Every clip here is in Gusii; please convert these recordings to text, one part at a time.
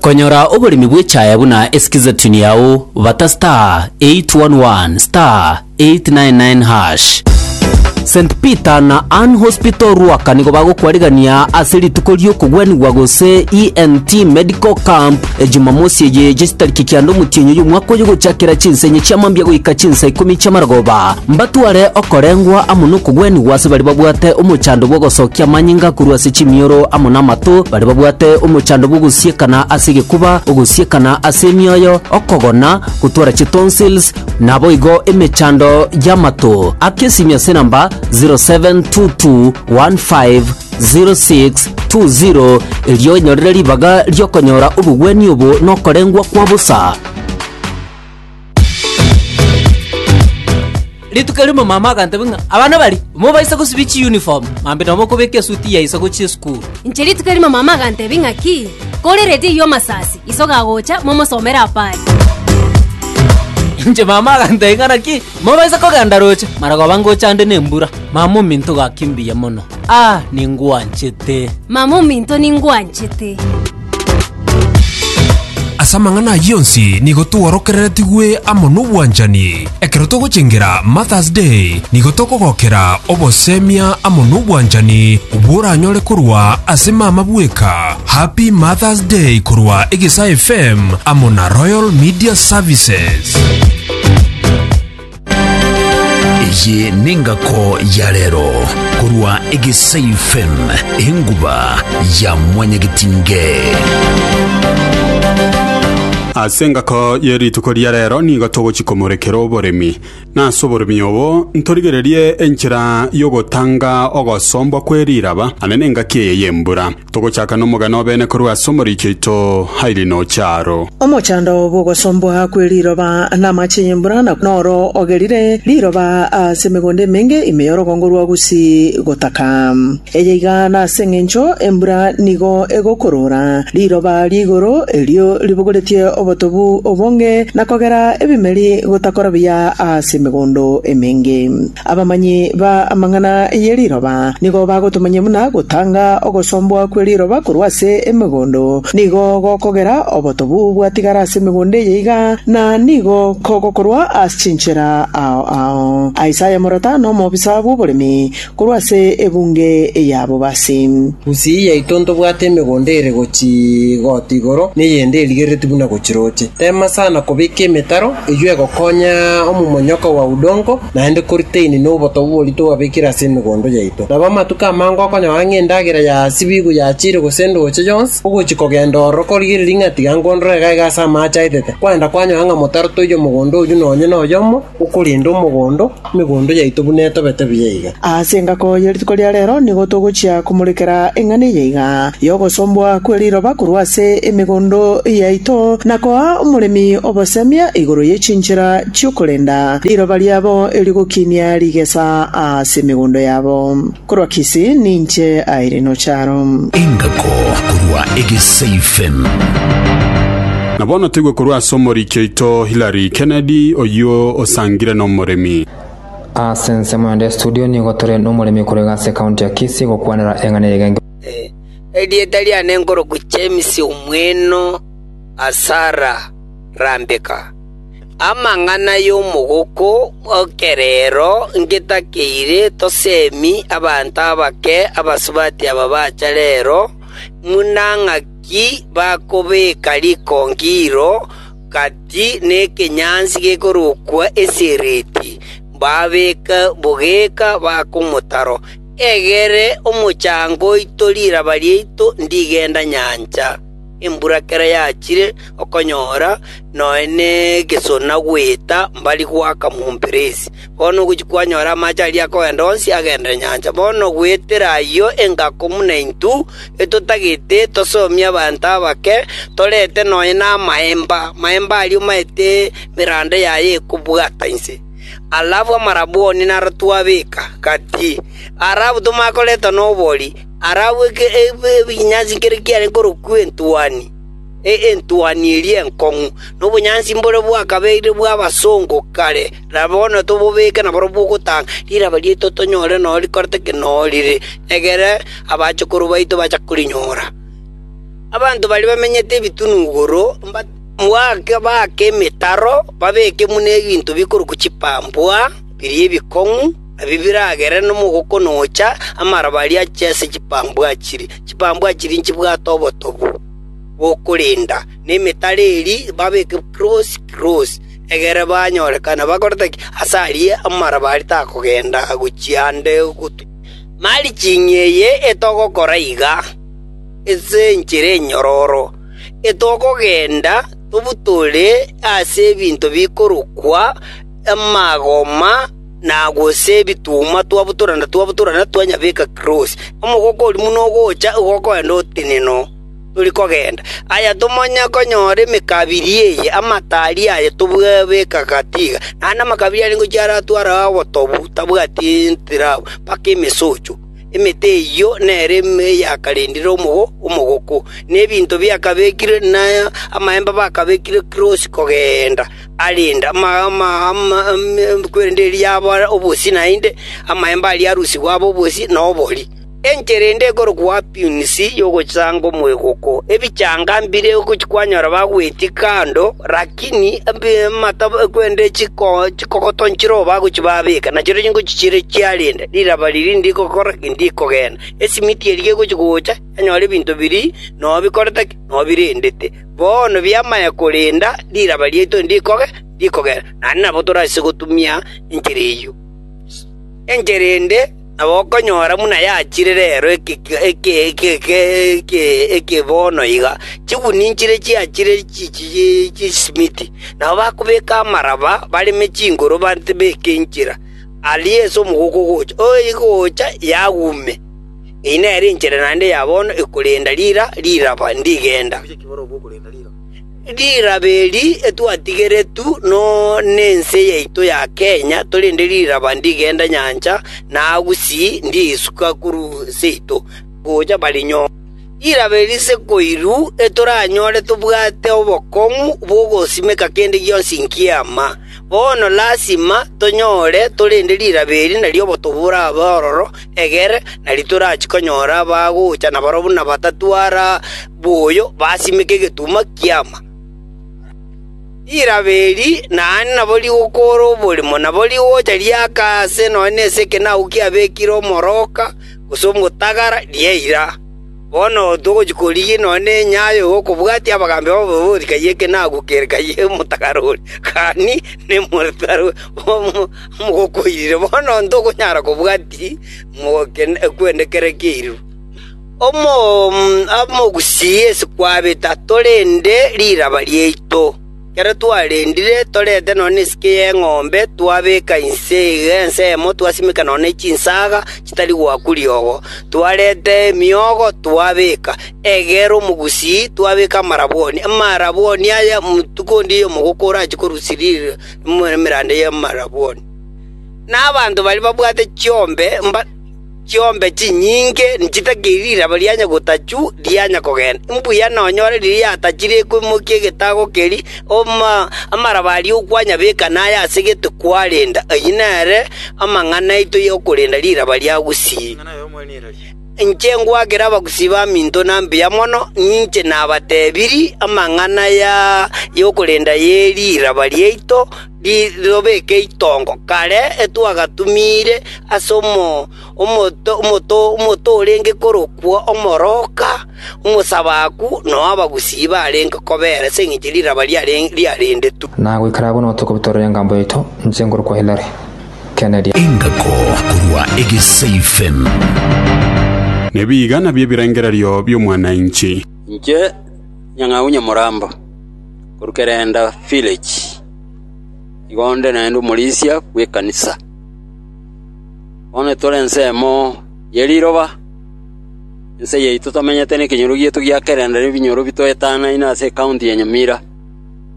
Konyora oboremi bw'echaaya buna esikizatuni yao bata star 811 star 899 hash. St Peter na Ann Hospital Ruaka nigo bagokwarigania ase rituko ri'okogwenigwa gose ENT Medical Camp e Jumamosi eye gesitariki kianda omotienyi oy'omwaka oyo gochakera chinsa enye chia mambia goika chinsa ikomi chi'amarogoba. Mbatware okorengwa amo nokogwenigwa ase baria babwate omochando bw'ogosokia amanyinga korwa ase chimioro amo namato Baria babwate omochando bw'ogosiekana ase egekuba, ogosiekana ase emioyo, okogona, gotwara chitonsils, naboigo emechando y'amato. Aka esimi ase enamba 0722150620 erio onyorere ribaga ri'okonyora obogwenia obo nokorengwa kwa bosa. Rituko rimo mama agantebia ng'a abana baria mobaisa gosibia chiuniform mambi nonya mokobeka esuti ya isagu chie esukuru. Inche rituko rimo mama agantebia ng'aki, korereti eyio omasasi, iso gagocha, momosomere apa aye. Inche mama agantebia ng'a naki mobaisa kogenda roche marogoba ngocha ande nembura. Mama ominto gaki mbuya mono. Aah ningwanchete. Mama ominto ningwanchete. Ase amang'ana ayio onsi nigo tworokereretigwe amo nobwanchani. Ekero togochengera Martha's Day, nigo tokogokera obosemia amo nobwanchani bworanyore korwa ase mama bweka. Happy Martha's Day korwa Egesaa FM amo na Royal Media Services. Eye nengako ya rero korwa Egesei FM, enguba ya mwanyagetinge. Ase engako ye rituko ria rero nigo togochia komorekera oboremi. Na ase oboremi obo ntorigererie enchera y'ogotanga ogosombwa kwe riraba, ane nengaki eye y'embura. Togochaka nomogano o bene korwa ase omoriki oito Hailey nocha aro. Omochando bw'ogosombwa kwe riroba namache y'embura na noro ogerire riroba ase emegondo emenge ime y'orogongo rwa Gusii gotaka. Eye iga nase engencho embura nigo egokorora riroba ri'igoro erio ribogoretie obotobu obonge na kogera ebimeri gotakora buya ase emegondo emenge. Abamanyi ba amang'ana ye riroba nigo bagotomanyia buna gotanga ogosombwa kwe riroba korwa ase emegondo nigo gokogera obotobu bwatigara ase emegondo eye iga, na nigo kogokorwa ase chinchera ao ao. Isaya morata nomobisa bw'oboremi korwa ase ebunge y'abobasi. Gusii yaito ntobwate emegondo ere gochia goota igoro, na eyende erigereretie buna gochia roche. Tema sana kobeka emetaro, Eyio egokonya omomonyoka oa udongo, naende koritaini noboto bw'oborio twabekire ase emegondo yaito. Nabo amatuko amange okonyora ng'a endagera ya sibigu yachiire gose endooche yonsi, ogochia kogenda ororo korigereria ng'a tiga ngondore iga iga ase amaache aetete, kwagenda kwanyora ng'a motarotoiyo omogondo oyio nonye noyomo okorenda omogondo, Emegondo yaito buna etobete buya iga. Ase engaki ye rituko ria reero nigo togochia komorekera eng'ana eye iga y'ogosombwa kwe riroba korwa ase emegondo yaito, na koa omoremi obosemia igoro ye chinchera chi'okorenda riroba riabo erio gokinia rigesa ase emegondo yabo. Korwa Kisi ninche Irene Ocharo. Engako korwa Egesaifem. Na bono toigwe korwa ase omoriki oito Hilary Kennedy, oyio osangire nomoremi. Ase ensemo yonde ya studio nigo tore nomoremi korega ase county ya Kisii gokwanera eng'ana eyio egengeo. Erieta riane nkoroku James Omweno Asara Rambika. Amang'ana y'omogoko bw'ekerero ngetakeire toseemi abanto abake abasubati aba bacha reero, buna ng'aki bakobeka rikongiro gati nekenyansi gekorokwa Esiriti, mbabeke bogeka bakomotaro. Egere omochango oito riraba riaito ndigenda nyancha. Embura kera yachire okonyora nonya negesona goeta mbari goaka momperesi. Bono ogochia kwanyora amache aria akogenda onsi agendere nyancha. Bono goetera ayio engako buna intwe etotagete tosomie abanto abake, torete nonya namaemba, maemba aria omaete emeranda yaye ekobwata inse. Alafu amarabwoni naro twabeka gati, ara abwo tomanye koreta nobori. arabweke ebinyansi nkere kiare korokwa entuani, entuani eria enkong'u, na obonyansi mbore bwakabeire bw'abasongo kare, na bono tobobeke nabarabwo ogotanga riraba riaito tonyore nao rikorete ki nao rire, egere abachukuru baito bache korinyora. Abanto baria bamenyete ebitunugoro baake emetaro, babeke buna ebinto bikorokwa chipambwa biria ebikong'u, Ebi biragere nomogokona ogocha amaroba aria ache ase chipambwa chiri. Chipambwa chiri nchibwate obotobu bw'okorenda, na emetara eria babeke kirosi kirosi, egere banyorekane bakorete ki aase aria amaroba aria takogenda gochia ande gotunyana. Marching eye etogokora iga, Ase enchera enyororo etogogenda tobutore ase ebinto bikorokwa amagoma, na gose ebituma twabutora na twabutora na twanyabeka Tirosi. Omogoko oria buna ogocha igo okoenda otenena oo tori kogenda. Aye tomanye konyora emekabiri eye amataari aye tobwabeka gati iga, naende amakabiri aria ngochia aratware ao obotobu tabwati ntiraba mpaka emesocho. Emete eyio nere eyakarendire omogoko, na ebinto biakabekire na amaemba bakabekire Tirosi kogenda. arende kwerende erio yaba obosie naende, amaemba aria arusigwe abe obosie na obori. Enchera ende ekorokwa Apinisi y'ogochanga omwegoko. Ebichanga mbire gochia kwanyora bagwetie kando, rakini amata kwerende chikogoto nchirobo bagochia babeka, nachirochio ngochia chire chiarenda, riraba riria rinde gokora rinde kogenda. Esimiti eria egochia gocha yanyora ebinto biria nao bikorete ki? Nao birendete. Bono bi'amaya korenda riraba riaito ndikoge, ndikogera, naende nabo torase gotumia enchera eyio. Enchera ende nabo okonyora buna yachire rero eke bono iga, chiguni nchire chiachire chisimiti, nabo bakobeka amaraba bareme chinguru batebeke enchera, aria ase omogoka ogocha, ogocha yagume. Eye nere enchera naende ya bono ekorenda riira riraba ndigenda. Riraba eri etwatigeretu nense yaito ya Kenya torende riraba ndigenda nyancha na gusii ndiisuka korwa seito gocha Baringo. Riraba eri sekoiru etoranyore tobwate obokong'u bw'ogosimeka kende gionsi nki'eama. Bono lasima tonyore torende riraba eri nario obotuko borabe ororo, Egere, na ritorachi konyora abagocha naboro buna batato ara boyo basimeke egetunwa ki'ama. Rirabe eri naende nabo rigokoora oborimo, nabo rigocha riaka aase nonya nase ekenagu kiabekire omoroka gose omotagara, riaira. Bono togochia korigia nonya nenyayo y'okobwatia abagambi baboigo rikaiyia ekenagu kere kaiyia omotagara oria, gani nemotagara oria. Mogokoirire bono ntokonyara kobwati kwende kere keiriro. Omogusii ase kwabeta torende riraba riaito, ekero twarendire torete nonya nesike y'eng'ombe twabeka inse iga ensemo twasimeka nonya ne chinsaga chitari goakwa riogo, twareta emiogo twabeka, egere omogusii twabeka amarabwoni. Amarabwoni aya omotuko onde omogoka orachie korusia ririro. nemerande y'amarabwoni, na abanto baria babwate chiombe mba chiombe chinyinge chitakiri riraba rianya gotachwa rianya kogenda. Mbuya nonyore riria yatachire ekoimokia egetago keria, amaraba aria okwanyabeka naye ase gete kwarenda. Ayio nere amang'ana aito y'okorenda riraba ria gusii. Inche ngwakera abagusii baminto na mbuya mono, ninche nabatebirie amang'ana y'okorenda ye riraba riaito ritobeke itongo kare etwagatumiire ase omoto orenge korokwo omoroka, omosabaku, na ow'abagusii barenge kobeera ase engencho riraba riarendetwe. Na goika bono tokobua torore engambo yaito, inche ngorokwa Hilary. gotokeneria. Engako korwa egeseifen. Nebiiga nabio ebirengererio bi'omwananchi. Inche Nyang'au Nyamorambo, korwa Kerenda Village, igo nde naende omorisia bw'ekanisa. Bono tore ensemo ye riroba, ense yaito tomenyete nekenyoro gieto gia Kerenda nebinyoro bitoetanaine ase ekaunti ya Nyamira.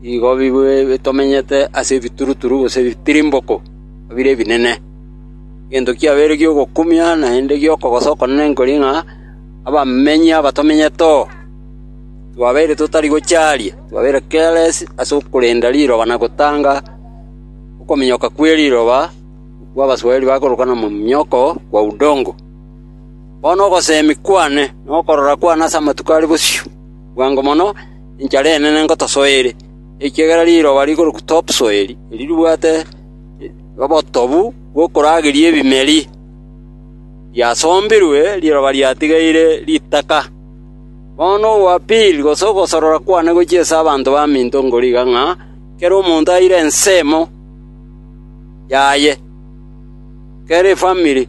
Igo bitomenyete ase ebituruturu gose ebitirimboko bire ebinene. Egento kiabeire gi'ogokumia naende gi'okogosa okonene nkori ng'a abamenyi aba tomenyete oo, twabeire totari gochia aaria, twabeire careless ase okorenda riroba na gotanga okominyoka kwe riroba, okwo Abaswahili bakorokana mmomonyoko wa udongo. Bono ogosemi kwane na okorora kwane ase amatuko are bosio bwango mono, enchara enene ngotosoe ere, ekiagera riroba rigorokwa Topsoeli, erio ribwate obotobu bw'okorageria ebimeri, riasombirwe riroba riatigaire ritaka. Bono ogoapiri gose ogosorora kwane gochia ase abanto baminto nkorigia ng'a kera omonto aire ensemo yaye, kera efamiri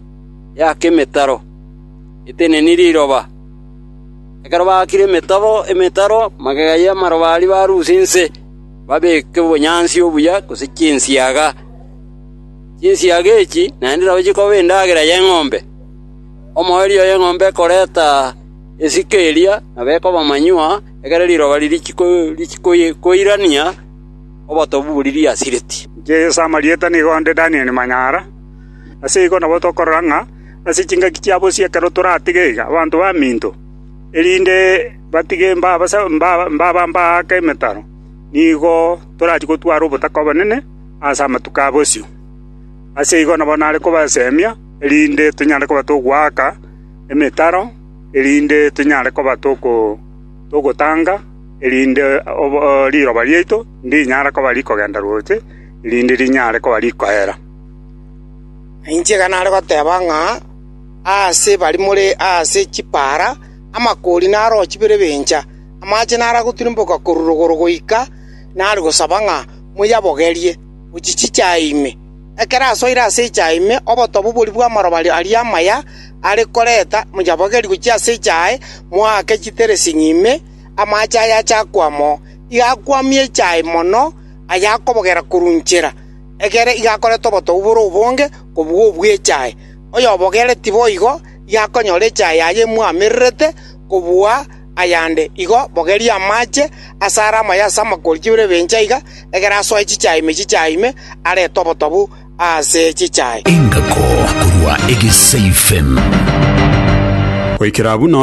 yake emetaro eteneni riroba. Ekero baakire emetobo emetaro, magega y'amarobaari baruuse inse, babeeke obonyansi obuya gose chinsiaga. Chinsiaga echi naende nabo chikoba endagera y'eng'ombe. Omoerio y'eng'ombe ekoreta esike eria nabo ekoba manyuwa, ekero riroba riria richikoirania obotobu boria riasireti.” Inche Yeso amarieta nigo onde Danieli Manyara. Ase igo nabo tokorora ng'a ase chingaki chia bosio ekero toratige iga abanto baminto, erinde batige mbabambe aake emetaro, nigo torachie gotwara obotaka obonene ase amatuko a bosio. Ase igo nabo nare kobasemia erinde tonyare koba togoaka emetaro, erinde tonyare koba togotanga, erinde riroba riaito ndinyara koba rikogenda roche, erinde rinyare koba rikoera. Na inche iga nare goteba ng'a aase bari more aase chipaara amakoori narochie bire bencha, amache nare agotirimboka korwa rogoro goika nare gosaba ng'a moyabogerie, gochia chichaya ime. Ekero asoire ase echaya ime, obotobu boria bw'amaroba aria amaya are koreta moyabogerie gochia ase echaya aye, moake chiteresing'i ime, amache aye ache akwama oo. Iga akwamie echaya mono, aye akobogera korwa inchera. egere igakorete obotongu bore obonge kobua obw'echae. Oyobogereti boigo igakonyora echae yaye emwamererete kobua ayande. Igo bogeria amache asare amaye ase amakori chibere ebencha iga, egere asoe chichae ime chichae ime, arete obotongu ase chichae. Engako korwa egesaifem. Goikera buna.